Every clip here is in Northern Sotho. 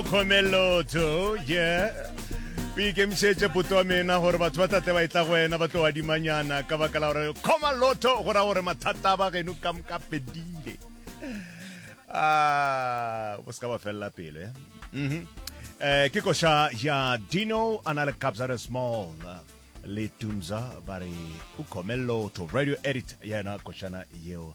Khomelotho, yeah o ikemišetše poto wa mena gore batho ba tate ba etla go wena ba tlo adimanyana ka baka la gore kgoma lotho go ra gore mathata a ba geno ka moka fedile ah, o se ka ba felela pelo ya mhm. eh, ke koša ya dino a na le capsare small le tunza ba re o kgome lotho radio edit yena košana yeo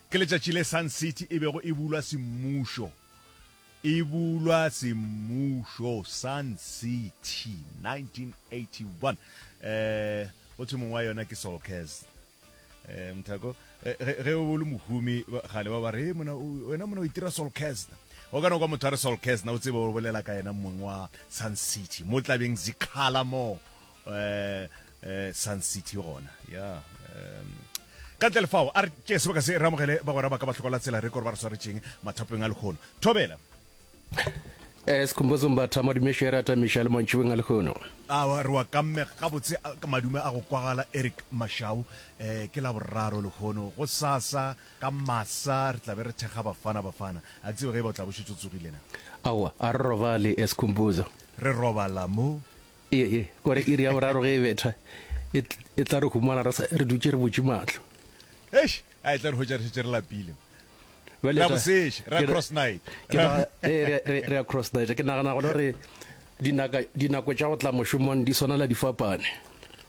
Ke letšatši le Sun City e bego e bulwa semmušo. E bulwa semmušo, Sun City, 1981. Go thwe mong wa yona ke Sol Kers. Eh, Mthako, eh, ge o le mohumi gale ba ba re, mona, wena mona o itira Sol Kers. O ka no kwa motho a re Sol Kers, na o tsebe o bolela ka yena mong wa Sun City. Mo tlabeng Zikhala mo, Sun City gona ya ka ntle lefao a re tšee sebaka se re amogele bagwera ba ka ba hlokola tsela re kore ba re swaretšeng mathapong a lekgono thobela Sikhumbuzo Mbatha Madumešo ya rata meša le mantšhibeng a lekgono. A re wa kammega gabotse ka madume a go kwagala Eric Mashau eh ke la boraro lekgono go sasa ka masa re tlabe re thekga bafana bafana a tsebe ge e ba o tla bošetšo tsogile na. Aowa a re robale Sikhumbuzo. Re robala mo. Ye, ye, kore iri ya boraro ge e betha, e, e tla re humana re, sa, re dutše re butše mahlo. Eish, a e tla re hwetša re šetše re lapile. Bjale Ra ta- boseše, ra ke re- cross night. Ke Ra- naga- ee, re- re- re ya cross night. Ke nagana gona gore dinaka- dinako tša go tla mošomong di swanela di fapane.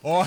Oh,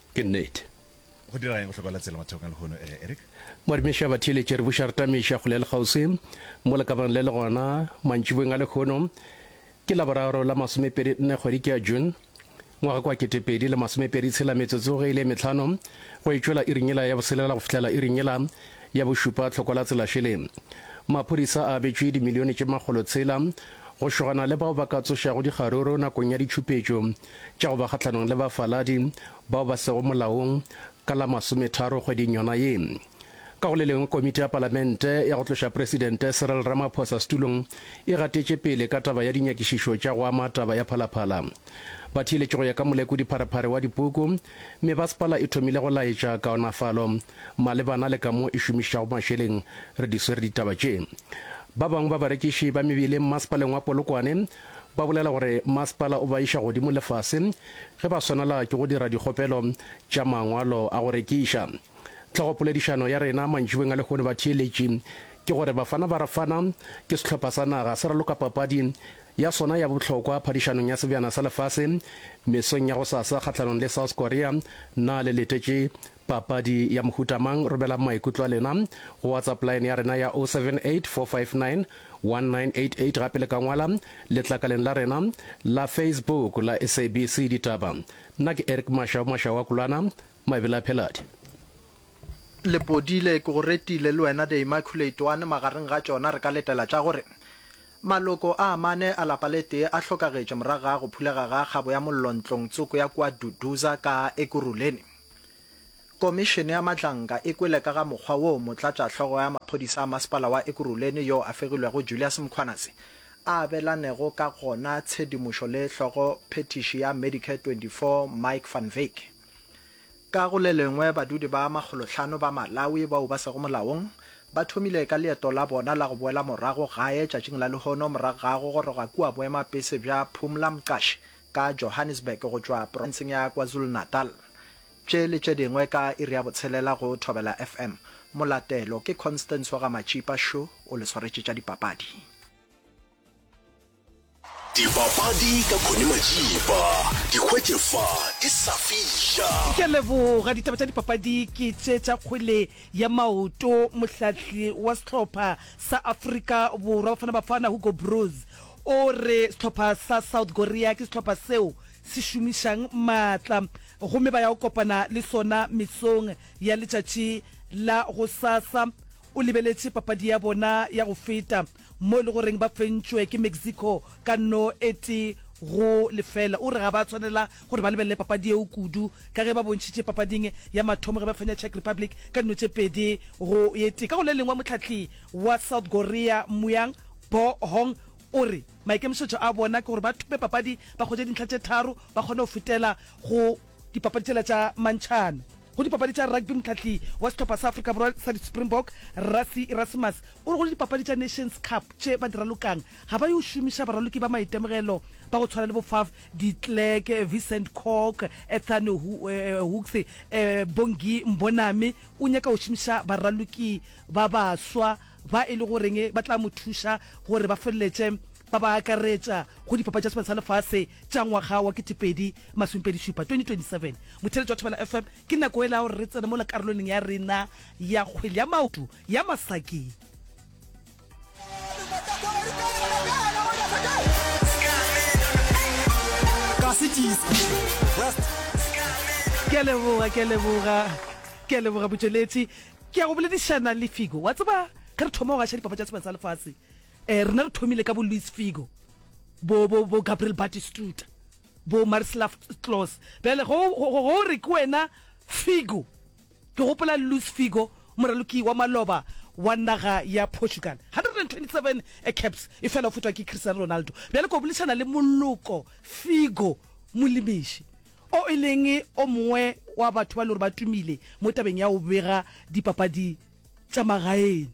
Ke nnete. Go dira eng go hloka la tsela mathokong a lehono, eh, Eric? Moadimiša ba theeletše re buša re tameiša kgole le kgauswi mo lekabanong le le gona mantšiboweng a lehono. Ke Laboraro la masomepedi nne kgwedi ke ya June, ngwaga kwa ketepedi le masomepedi tshela metsotso ge e le e metlhano go e tšwela iring yela ya boselela go fihlela iring yela ya bošupa tlhoko la tsela šele. Maphodisa a abetšwe dimilione tše makgolo tshela go šogana le bao ba ka tsošago dikgaruru nakong ya ditšhupetšo. tša go ba kgahlanong le bafaladi bao ba sego molaong ka la masometharo kgweding yona ye. Ka go le lengwe, komiti ya palamente ya go tloša presidente Cyril Ramaphosa setulong e gatetše pele ka taba ya dinyakišišo tša go ama taba ya Phalaphala. Ba theeletše go ya ka molekodi pharephare wa dipuku, mme basepala e thomile go laetša kaonafalo malebana le ka mo e šomišitšago mašeleng. Re di swere ditaba tše. Ba bangwe ba barekiši ba mebeleng masepaleng wa Polokwane Ba bolela gore masepala o ba iša godimo le fase ge ba swanela ke go dira dikgopelo tša mangwalo a go rekiša. Tlhogopoledišano ya rena mantšibeng a lehono batheeletši ke gore Bafana Barafana ke sehlopha sa naga se raloka papadi ya sona ya bohlokwa phadišanong ya Sebjana sa Lefase mesong ya gosasa kgahlanong le South Korea na le letetše Papadi ya mohuta mang? Romelang maikutlo a lena go WhatsApp line ya rena ya 078 459 1988 gape le ka ngwala letlakaleng la rena la Facebook la SABC Ditaba. Nna ke Eric Mashau, Mashau wa Kulana, Mabele a Pheladi. Lepodile, ke go retile le wena The Immaculate One, magareng ga tšona re ka letela tša gore, Maloko a amane a lapa le tee a hlokagetše morago ga go phulega ga kgabo ya mollo ntlong tsoko ya kua Duduza ka Ekurhuleni. Komišene ya Matlanka e kwele ka ga mokgwa woo motlatšahlogo ya maphodisa a masepala wa Ekurhuleni yo a fegilwego Julius Mkhwanazi a abelanego ka gona tshedimošo le hlogo phethiši ya Medicare 24 Mike Van Wyk. Ka go le lengwe badudi ba makgolohlano ba Malawi bao ba sego molaong ba thomile ka leeto la bona la go boela morago gae tšatšing la lehono morago ga go goroga kua boemapese bja Phumla Mqashi ka Johannesburg go tšwa profenseng ya KwaZulu-Natal. Tše le tše dingwe ka iri ya botshelela go Thobela FM. Molatelo ke Constance wa ga Matšipa Šo o le swaretše tša dipapadi. Dipapadi ka Connie Matšipa, di hwetše fa di sa fiša. Ke a leboga. Ditaba tša dipapadi ke tše tša kgwele ya maoto. Mohlahli wa sehlopha sa Afrika Borwa Bafana Bafana, Hugo Broos, O re sehlopha sa South Korea ke sehlopha seo se šomišang maatla gomme ba ya go kopana le sona mesong ya letšatši la gosasa. O lebeletše papadi ya bona ya go feta mo e le goreng ba fentšwe ke Mexico ka no e tee go lefela. O re ga ba tshwanela gore ba lebelele papadi yeo kudu ka ge ba bontšhitše papading ya mathomo ge ba fenya Czech Republic ka dino tše pedi go e tee. Ka go le lengwe, mohlahli wa South Korea Muyang, Bo Hong o re maikemišetšo a bona ke gore ba thope papadi ba hwetše dintlha tše tharo ba kgone go fetela go dipapadi tšela tša mantšhana. Go dipapadi tša rugby mohlahli wa sehlopha sa Afrika Borwa sa di-Springbok, Rassie Erasmus o re go dipapadi tša Nations Cup tše ba di ralokang ga ba yo šomiša baraloki ba maitemogelo ba go tshwana le bo Faf de Klerk, Vincent Koch, Ethan Hooks, Bongi Mbonambi o nyaka go šomiša baraloki ba baswa ba e le goreng ba tla mo thuša gore ba feleletše ba ba akaretša go dipapadi tša sebaka sa lefase tša ngwaga wa ketepedi masomepedišupa 2027 motheletši wa thobela fm ke nako e la gore re tsene mo la karoloneng ya rena ya kgwele ya maoto ya masaki ke a leboga ke a leboga ke a leboga botšweletši Ke ya go boledišana le Figo. Wa tseba, ge re thoma go gaša Dipapadi tša Sebjana sa Lefase, eh, rena re thomile ka bo Luis Figo, bo, bo, bo Gabriel Batistuta, bo Marislav Klose. Bjale ge o, ge o re ke wena Figo, ke gopola Luis Figo, moraloki wa maloba wa naga ya Portugal. 127 caps, efela o fetwa ke Cristiano Ronaldo. Bjale ke yo boledišana le Moloko Figo, molemiši. o e leng o mongwe wa batho ba e le gore ba tumile mo tabeng ya go bega dipapadi tša magaeng,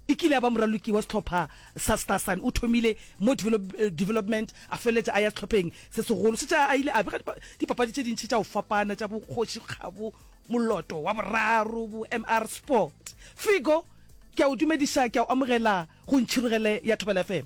e kile ya ba moraloki wa sehlopha sa Starsun. O thomile mo development a feleletša a ya sehlopheng se segolo se tša a ile a bega dipapadi tše dintši tša go fapana tša bo Kgoši Kgabo, Moloto wa Boraro, bo MR Sport. Figo, ke a o dumediša, ke a o amogela go Ntšhirogele ya Thobela FM.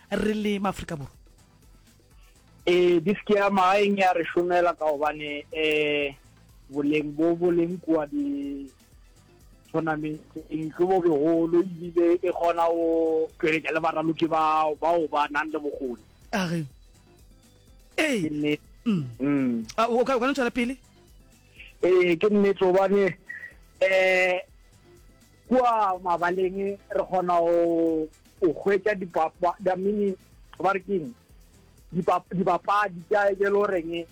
re le maafrika borwa ee eh, disk ya magaeng ya re šomela ka gobane um eh, boleng bo bo leng kua di-tournamenteng ke bo begolo ebile e kgona go tšweletša le baraloki bao bao ba nang le bokgoni age ee mm. mm. ah, o ka no tšwela pele ee ke nnete gobane um eh, Kua mabaleng re kgona go o hwetša dipapa da mini ba re keng dibapadi tša e lo reng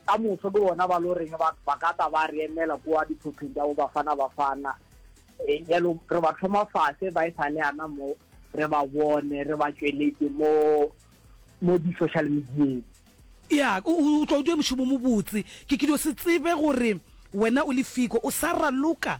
ka moso ke bona ba lo reng ba ba ka tla ba re emela kua diphopheng tša bo bafana bafana jalo re ba thoma fase ba e sa le ana mo re ba bone re ba tšweletse mo mo di-social medieng. Ya o tlo o dira mošomo mobotse ke ke dio se tsebe gore wena o le fiko o sa raloka.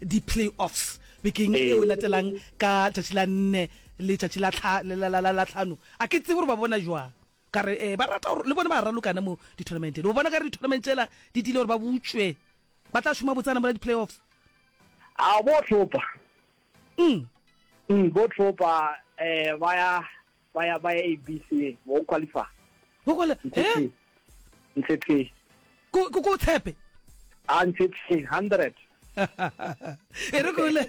di-play-offs bekeng e o latelang ka tšatši la nne le tšatši la tlhano a ke tsebe gore ba bona jwang ka re um ba rata gore le bone ba ralokana mo di-tournamenteng o bona ka re di-tournament tsela di dile gore ba butšwe ba tla šoma botsana mola di-play-offs a bo tlhopa bo tlhopa um ba ya ba ya ba ya abc o qualify go kwala eh ntse tse ko ko ko tshepe a ntse tse 100 e re ko le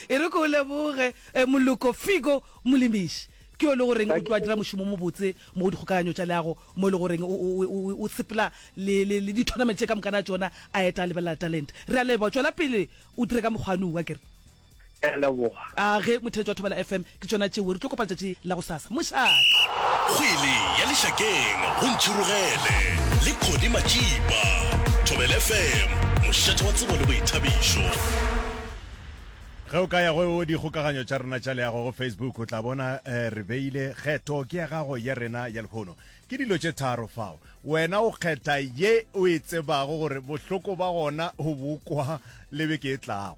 e re ko le boge eh, moloko figo molimishi ke yo le goreng o tloa dira mošomo mo botse mo go dikgokaganyo tša leago mo e le goreng o- o- o o sepela le le- le di-tournament tše ka mokana tšona a eta a lebelela talent re a leboa tšwela pele o dire ka mokgwane ua kere Ke a leboga. A ge motheletse wa Thobela FM ke tšona tšeo re tlo kopa letšatši la go sasa. Mošate. Kgwele ya lešakeng go Ntšhirogele le Connie Matšipa. Thobela FM, mošate wa tsebo le boithabišo. Ge o ka ya go dikgokaganyo tša rena tša leago go Facebook o tla bona eh, re beile kgetho ke ya gago ya rena ya lehono. Ke dilo tše tharo fao. Wena o kgetha ye o e tsebago gore bohloko ba gona o bokwa le beke e tlago.